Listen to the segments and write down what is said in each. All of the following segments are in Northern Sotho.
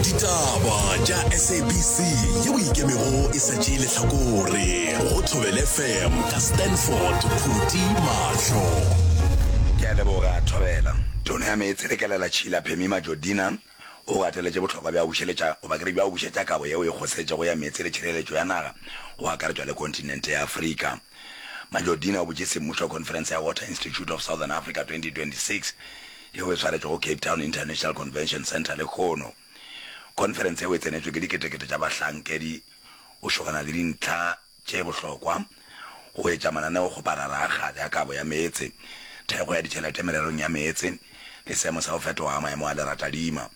ditaba tša sabc ye o ikemego e sa tšee lehlakore go thobele fm ka stanford phuti mahlo ke a leboga thobela tono ya meetse le kelela tšhila phemi majodina o gateletše bohlokwa bja bušeletša goba kere bja go bušetša kabo yeo e kgosetšego ya meetse le tšhireletšo ya naga go akaretšwa le kontinente ya afrika majodina o botše semmušo conference ya water institute of southern africa 2026 yeo e swaretšwe go Cape Town International Convention Centre lehono. Khonferense yeo e tsenetšwe ke diketekete tša bahlankedi go šogana le dintlha tše bohlokwa, go etša mananeo go bararaga le a kabo ya meetse, thekgo ya ditšhelete mererong ya meetse le seemo sa go fetoga ga maemo a leratadima.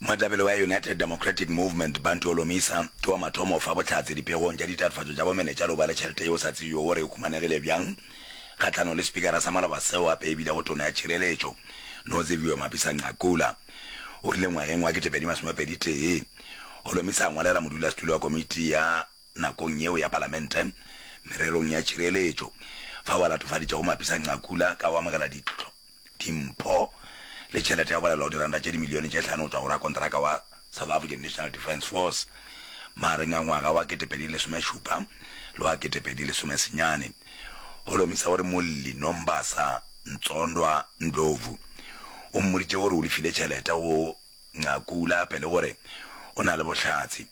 Moetlapele wa United Democratic Movement, Bantu Holomisa, ke wa mathomo go fa bohlatse dipegong tša ditatofatšo tša bomenetša le go ba le tšhelete yeo o sa tsebjego gore e humanegile bjang kgahlanong le spikara sa maloba seo gape e bilego tona ya tšhireletšo, Noziviwe Mapisa-Nqakula. O rile ngwageng wa ketepedi masomepedi tee, Holomisa a ngwalela modulasetulo wa komiti ya nakong yeo ya palamente mererong ya tšhireletšo, fao a latofaditšego Mapisa-Nqakula ka go amogela ditlhokwa dimpho le tšhelete ya go balelwa go diranta tše dimilione tše hlano go tšwa go rakonteraka wa South African National Defence Force magareng a ngwaga wa ketepedi lesomešupa le wa ketepedi lesomesenyane go lomisa gore Molli Nombasa Ntsondwa Ndlovu o mmoditše gore o lefile tšhelete go Nqakula pele gore o na le bohlatse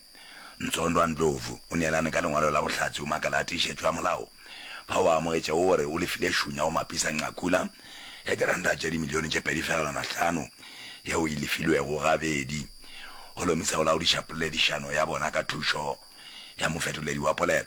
Ntsondwa Ndlovu o neelane ka lengwalo la bohlatse o makala a tiišetšo ya molao fa o amogetše o re o lefile Shunya o Mapisa Nqakula ya diranta tše dimilione tše pedi fegelwana hlano yeo e lefilwego gabedi go lomisa go laodiša poledišano ya bona ka thušo ya mofetoledi wa polelo.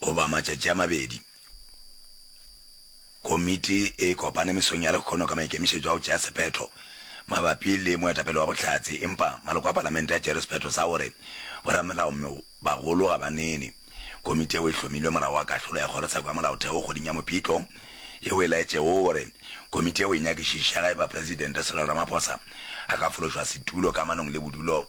goba matšatši a mabedi, komiti e kopane mesong ya lekgono ka maikemišetšo a go tšea sephetho mabapi le moetapele wa bohlatse, empa maloko a Palamente a tšere sephetho sa gore boramelao mme bagolo ga ba nene. Komiti yeo e hlomilwe morago ga kahlolo ya Kgorotsheko ya Molaotheo kgweding ya Mopitlo yeo e laetšego gore komiti yeo e nyakišiše ga e ba Presidente Cyril Ramaphosa a ka fološwa setulo kamanong le bodulo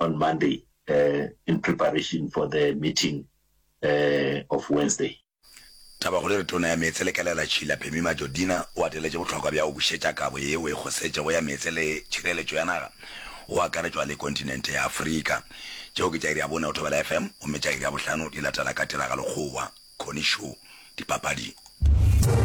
on Monday uh, in preparation for the meeting uh, of Wednesday. Tabakgolo re tona ya meetse le kelela Tšhila Phemi Majodina o ateletše bohlokwa bja go bušetša kabo ye o e kgosetšego ya meetse le tšhireletšo ya naga go akaretšwa le kontinente ya Afrika. Tšeo ke tša iri ya bone go Thobela FM gomme tša iri ya bohlano di latela ka tiragalokgowa, Connie Show, dipapading.